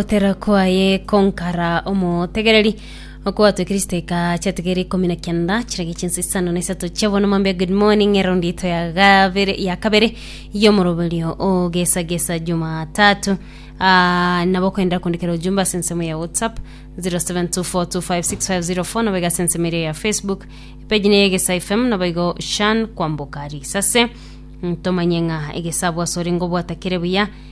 Gotera kwaye konkara omotegereri okwatwe Kristo eka chiategeri ikumi na kianda chirage chinsi isano na isato chia bono mambe good morning erondi ito ya gabere ya kabere yomoroberio ogesa gesa jumatatu Ah, nabo kwenda kundikira ujumbe ase ensemo ya whatsapp 0724256504 nabo igase ensemo eria ya facebook page ne egesa fm nabo igo shan kwamboka risase ntomanye ng'a egesabwa soringo bwatakire buya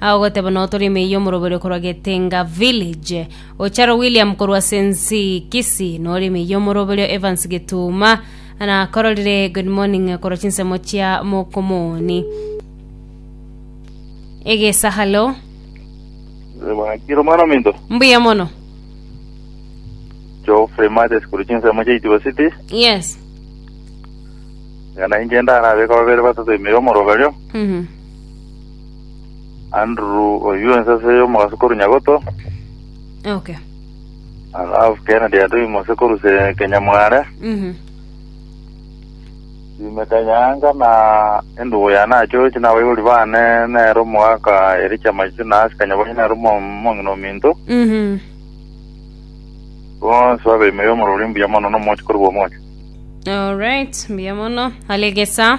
Ao goteba nao tore emei y'omoroberio korwa Getenga Village. Ocharo William korwa ase Nsii, Kisii, nore emei y'omoroberio Evans Gituuma nakororire Good Morning korwa chinsemo chia Mokomoni. Egesahalo. Mwakire omwana ominto Mbuya mono. Geoffrey Mathes korwa chinsemo chia Itibo City Yes. ng'a nainche ndarabeka babere batato ime y'omoroberio Mhm. Andrew oyio ensase y'omogaso korwa Nyagoto, Okay. alafu Kennedy Adui Mose korwa se- Kenyamware, Mhm. Jimmy Kanyanga na endugu yane achochi na abaibori bane nere omogaka Ericha Maisisi na Asi Kanyabonyi nere omo- omong'ina ominto, Mhm. bonsi babe ime y'omorori mbuya mono na omochi korwa omochi. Alright, mbuya mono. Alegesa.